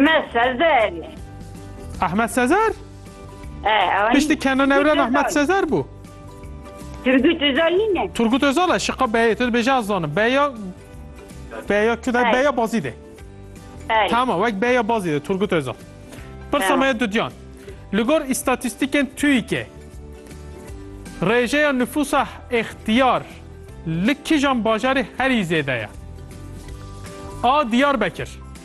Me Sezer. Ahmet Sezer? E, Piştî kenanewran Ahmet Sezer bû. Turgut Özal nîne. Turgut Özal e şiqa beyê tu dibêje ez zanim. Beya Beya Küday Ay. Beya Bazî de. Tamam wek Beya Bazî de Turgut Özal. Pirsa tamam. me dudyan. Li gor îstatîstîkên TÜİK'ê rêjeya nüfusa ixtiyar li kijan bajarê herî zêde ye. A Diyarbekir.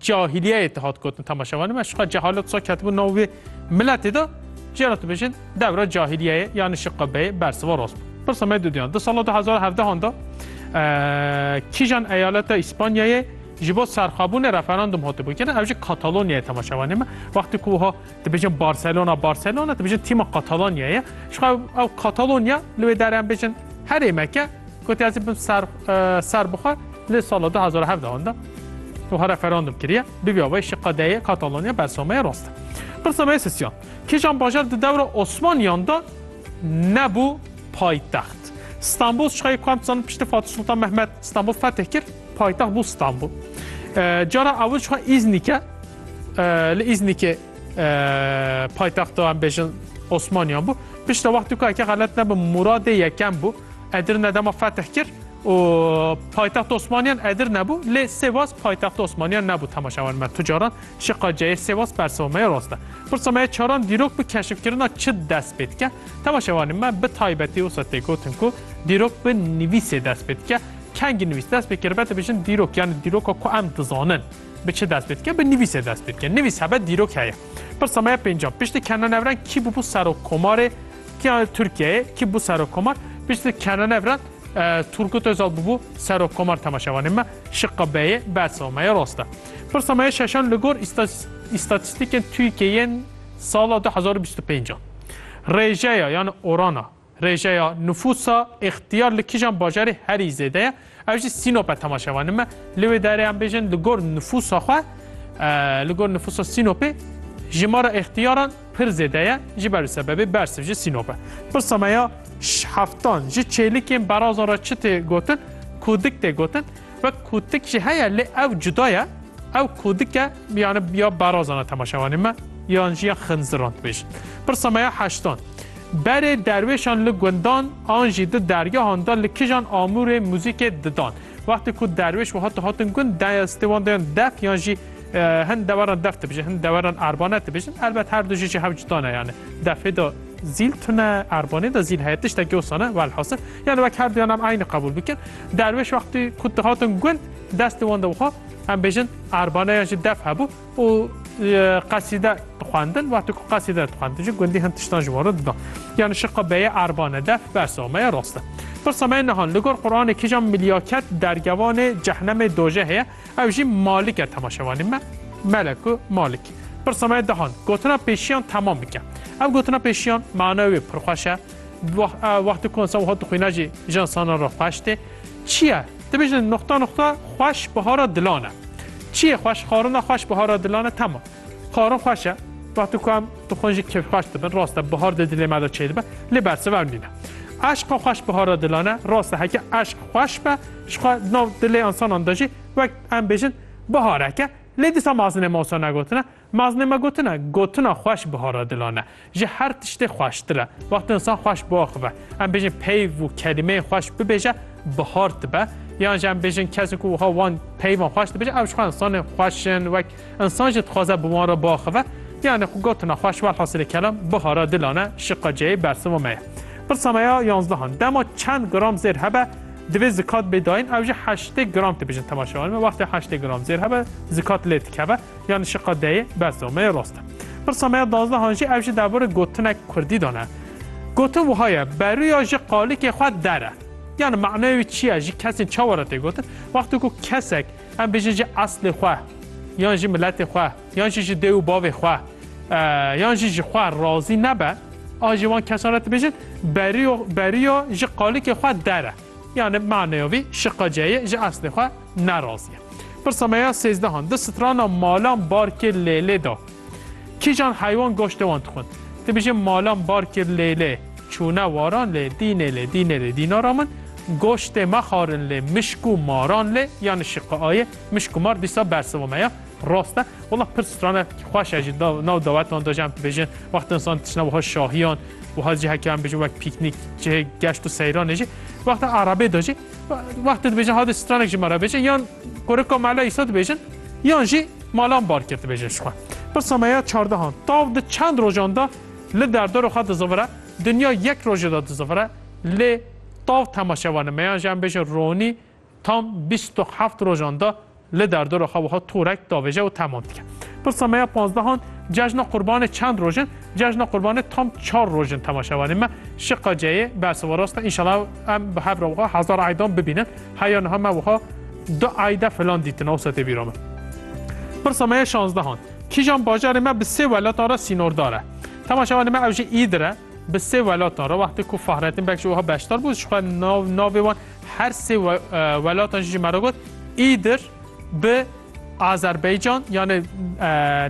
Cahiliyeyê dihat gotin temaşevanê me şiqa cehalet wisa ketibû nav wê miletê de cî re dibêjin dewra cahiliyeyê yanî şiqa beyê bersiva rast bû. Pirsa me dûdiyan di sala du hezar û hevdehan de kîjan eyaleta Îspanyayê ji bo serxabûnê referandum hatibû kirin ew jî Katalonyayê temaşevanê me wextê ku wiha Dibêjin Barcelona Barcelona dibêjin tîma Katalonyayê ye. Ji xwe ew Katalonya li wê derê em bêjin herê me ke gotiye ez ê bim ser eh, ser bixwe li sala 2017 de û ha referandum kiriye bibî avayê şi qedeyê Katalonya bersameyê rast e. Bersameyê sisiyan. Kêjan bajar di dewra Osmaniyan de nebû paytext. Stanbul ji xwe ku em dizanin piştî Fatih Sultan Mehmet Stanbul fetih kir paytext bû Stanbul. Eh, Cara ewil ji xwe Îznîke Li Îznîkê paytexta em bêjin Osmaniyan bû. Pişta wextû ka eke xelet nebim Muradê yekem bû. Edirne dema fetih kir û paytext Osmaniyan Edirne bû lê Sêwas paytext Osmaniyan nebû temaşewan me tucaran şi qaceyê Sêwas persewa me rast e. Pirsa me çaran dîrok bi keşifkirina çi dest pê dike? Temaşewanê me bi taybetî wisa tê gotin ku dîrok bi nivîsê dest pê dike. Kengî nivîs dest pê kiribe dibêjin dîrok yani dîroka ku em dizanin. Bi çi dest pê dike? Bi nivîsê dest pê dike. Nivîs hebe dîrok heye. Pirsa me ya pêncem. Piştî Kenanevran kî bûbû serokkomarê kî Tirkiyeyê kî bû serokkomar? Piştî Kenanevran Turgut Özal bûbû serokkomar temaşevanê me. Şiqa B'yê bersa me ya rast e. Pirsa me ya şeşan li gor îstatîstîkên TÜYK'ê yên sala 2025 a. Rêjeya yan orana Rêjeya nifûsa îxtiyar li kîjan bajarê herî zêde ye? Ew jî Sînop e tema şevanî me. Li wê derê em bêjin li gor nifûsa xwe, li gor nifûsa Sînopê jimara îxtiyaran pir zêde ye ji ber û sebebê bersiv ji Sînop e. Pirsa me ya heftan ji çêlikên berazan re çi tê gotin? Kûdik tê gotin. Wek kûtik jî heye lê ew cuda ye. Ew kûdik e yani ya berazan e tema şevanî me yan jî ya xinziran dibêjin. Pirsa me ya heştan. Berê derwêşan li gundan an jî di dergehan de li kijan amûrê muzîkê didan. Wextê ku derwêş wiha tu hatin gund daya stê wan dayan def yan jî hin deweran def dibijin hin deweran erbane dibijin. Elbet her du jî ji hev cuda ne yani defê de zîl tune erbanê de zîl heye tiştekî wisa ne welhasil yani wek her duyan em eynî qebûl bikin. Derwêş wextê ku tu hatin gund destê wan de wiha em bêjin erbane yan jî def hebû. û qesîde dixwendin wextê ku qesîde dixwendin jî gundî hin tiştan ji wan re dida. Yani şiqa beyê erbane def bersa me ye rast e. Pirsa me ye niha li gor Quranê kîjan milyaket dergevanê cehnemê dojehê ye ew jî malik e temaşevanî me meleku malik. Pirsa me ye dihan gotina pêşiyan temam bike. Ev gotina pêşiyan manayê wê pirxweş e. Wextê ku insan wiha dixwîne jî ji insanan re xweş tê. Çi ye? Dibêjin nuqta nuqta xweş bihara dilan e. Çi yê xweş? Xwarin de xweş bihara dilan e. Tema. Xwarin xweş e. Wextê ku em dixwin jî kêfxweş dibin. Rast e bihar di dilê me de çêdibe. Lê bersiv ew nîne. Eşqa xweş bihara dilan e. Rast e heke eşq xweş be jixwe di nav dilê insanan de jî wek em bêjin bihareke. Lê dîsa me azinê me wisa negotine. Maznê me gotin e, gotina xweş bihara dilan e. Ji her tiştê xweştir e. Wextê însan xweş biaxive, em bêjin peyv û kelîmeyên xweş bibêje, bihar dibe. Yan jî em bêjin kesê ku wiha wan peyvan xweş dibêje, ew ji xwe insanên xweş in, wek însan jî dixwaze bi wan re biaxive. Yanê xwe gotina xweş welhasilê kelam bihara dilan e, şiqa ceyê bersiva me ye. Pirsa me ya yanzdehan, dema çend gram zêr hebe divê zikat bê dayîn, ew jî heştê gram tibêjin temaşevanê me. Wextê heştê gram zêr hebe zikat lê dikeve. Yan şiqa deyê bes do me yê rost e. Pirsa me ya dazdehan jî ev jî derbarê gotinek kurdî de ne. Gotin wiha ye berûya ji qalikê xwe der e. Yan manaya wî çi ye ji kesên çawa re tê gotin? Wextê ku kesek em bêjin ji eslê xwe yan ji miletê xwe yan jî ji dê û bavê xwe yan jî ji xwe razî nebe a ji wan kesan re dibêjin berûya ji qalikê xwe der e. Yanê bi maneya vî şiqeceyê ji eslê xwe ne razî ye. Pirsa me ya sêzdehan, di strana malan barkê lêlê de kîjan heywan goştê wan dixwin? Ti bijî malan barkê lêlê çûne waran lê, dînê lê, dînê lê, dînara min, goştê me xarin lê, mişk û maran lê, yanê şiqe ayê, mişk û mar dîsa bersiva me ya. Rast e. Wela pir strane xweş e jî nav dawetan de jî em dibêjin wexta insan tişne wiha şahiyan wiha cihekê em bêjin wek pîknîk cihê geşt û seyranê jî wexta erebê de jî wexta dibêjin hadê stranek ji me re bêjin yan korika mela îsa dibêjin yan jî malan bar kir dibêjin ji xwe. Pirsa me ya çardehan tav di çend rojan de li derdor xwe dizivire dinya yek rojê de dizivire lê tav temaşevanê me yan jî em bêjin ronî Tam bîst û heft rojan de li derdora xwe wiha torek davêje û temam dike. Pirsa me ya panzdehan, Cejna Qurbanê çend roj in? Cejna Qurbanê tam çar roj in temaşevanên me. Şiqa ceyê bersiv û rast e. Înşallah em bi hev re wiha hezar eydan bibînin. Heya niha me wiha du eyde filan dîtin awsa tê bîra min. Pirsa me ya şanzdehan, Kîjan bajarê me bi sê welatan re sînordar e? Temaşevanê me ew jî îdir e. Bi sê welatan re wextê ku Fahrettin Beg jî wiha beşdar bû ji xwe nav navê wan Her sê welatan jî me re got Îdir bi Azerbaycan yanê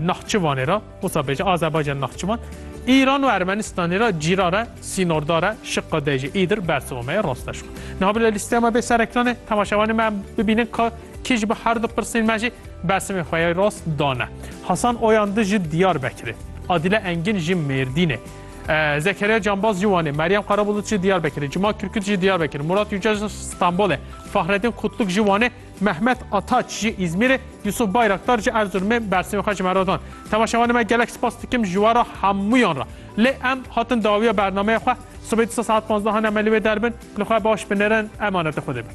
Nahçıvanê re, Osabeca Azerbaycan Nahçıvan, Îran û Ermenistanê re cîrar e, sînordar e, şiqa de jî Îdir bersiva me ye rasteş xwe. Niha bila lîsteya me bê ser ekranê, temaşevanê me em bibînin ka kî ji bo her du pirsên me jî bersimên xwe ya rast dane. Hasan Oyandı ji Diyarbekirê, Adile Engin ji Mêrdînê, Zekeriya Canbaz jî Wanê, Meryem Qarabulut jî Diyarbekirê, Cima Kirkut jî Diyarbekir, Murat Yücel Stenbolê, Fahredin Kutluk jî Wanê, Mehmet Ataç jî Îzmîrê, Yusuf Bayraktar jî Erzurumê bersîmê xwe ji me re dan. Temaşevanê me gelek spas dikim ji we re hemûyan re. Lê em hatin dawiya bernameya xwe. Sibê disa saet panzdehan em li wê derbin. Li xwe baş binirin, emanetê Xwedê bin.